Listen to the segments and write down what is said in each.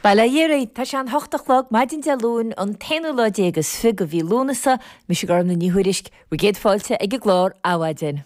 Bail ó Dhia oraibh! Tá sé an hocht a chlog, maidin Dé Luain, an t-aonú lá déag is fiche de mhí Lúnasa. Mise Gormfhlaith Ní Thuairisg, bhur gcéad fáilte ag an gclár Adhmhaidin.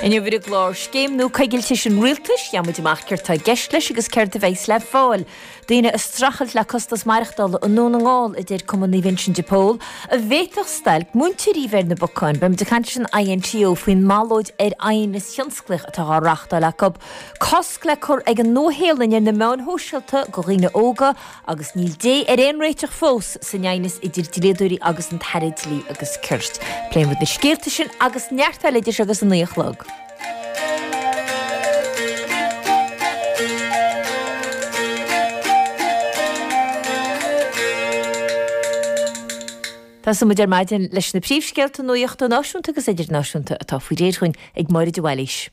Inniu ar an gclár, Scéim nua coigiltis an Rialtais, gheobhaimid amach céard tá i gceist leis agus céard a bheas le fáil. daoine ag streachailt le costas maireachtála i nDún na nGall, a deir Cumann Naomh Uinseann de Pól, an bhféadfadh stailc múinteoirí a bheith ar na bacáin. Beimid ag caint leis an INTO faoin mballóid ar aighneas thionsclaíoch atá á reáchtáil acu. Cosc le cur ag an Nua-Shéalainn ar na meáin shóisialta do dhaoine óga agus níl dé ar aon réiteach fós san aighneas idir dlíodóirí agus an tAire Dlí agus Cirt. Pléifidh muid na scéalta sin agus neart eile idir seo agus a naoi a chlog. Tosóidh muid ar maidin leis na príomhscéalta nuachta náisiúnta agus idirnáisiúnta atá faoi réir dúinn ag Máire de Bhailís.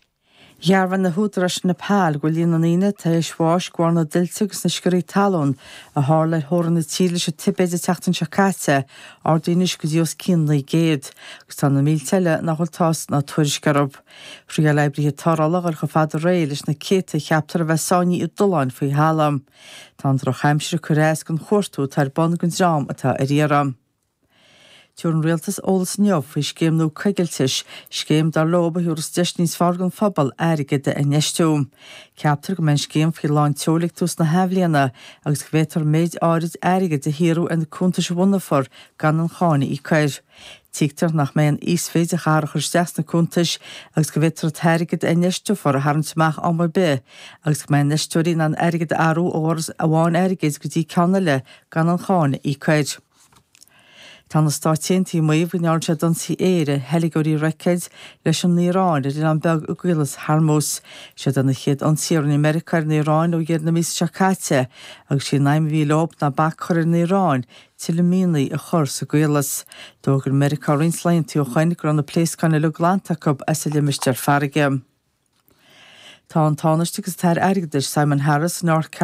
Dhearbhaigh na húdaráis in Nepal go bhfuil líon na ndaoine atá tar éis bháis de bharr na dtuilte agus na sciorrthaí talún a tharla ar theorainn na tíre leis an Tibéid an tseachtain seo caite ardaithe anois go dtí os cionn 900, agus tá na mílte eile nach bhfuil tásc ná tuairisc orthu. Thriáil oibrithe tarrthála a ghoil chomh fada aréir leis na céadta a cheaptar a bheith sáinnithe i dtolláin faoi thalamh. Tá an drochaimsir ag cur as don chuartú atá ar bun don dream atá ar iarraidh. Tabharfaidh an rialtas eolas inniu faoi scéim nua coigiltis, scéim dar leo a thabharfas deis níos fearr don phobal airgead a infheistiú. Ceaptar go mbeidh an scéim faoi lán tseoil ag tús na hathbhliana agus go bhféadfar méid áirid airgid a shaothrú ar na cuntais a bhunófar gan aon cháin a íoc air. Tuigtear nach mbeidh aon íosmhéid a chaithfear a chur isteach sna cuntais agus go bhféadfar an t-airgead a infheisteofar a tharraingt amach am ar bith agus go mbeidh infheisteoirí in ann airgead a athrú ó fhoras amháin airgid go dtí ceann eile gan aon cháin a íoc. Tá na Stáit Aontaithe ag maíomh go ndearna siad ionsaithe aeir ar theilgeoirí roicéid leis an Iaráin ar oileán beag i gCaolas Hormuz. Siod iad na chéad ionsaithe a rinne Meiriceá ar an Iaráin ó dheireadh na míosa seo caite, agus sí an aidhm a bhí leo ná bac a chur ar an Iaráin tuilleadh mianaigh a chur sa gCaolas. D'fhógair Meiriceá roinnt laethanta ó shoin go raibh na pléascáin uilig glanta acu as an limistéar farraige. Tá an Tánaiste agus an tAire Airgeadais, Simon Harris, in North Carolina,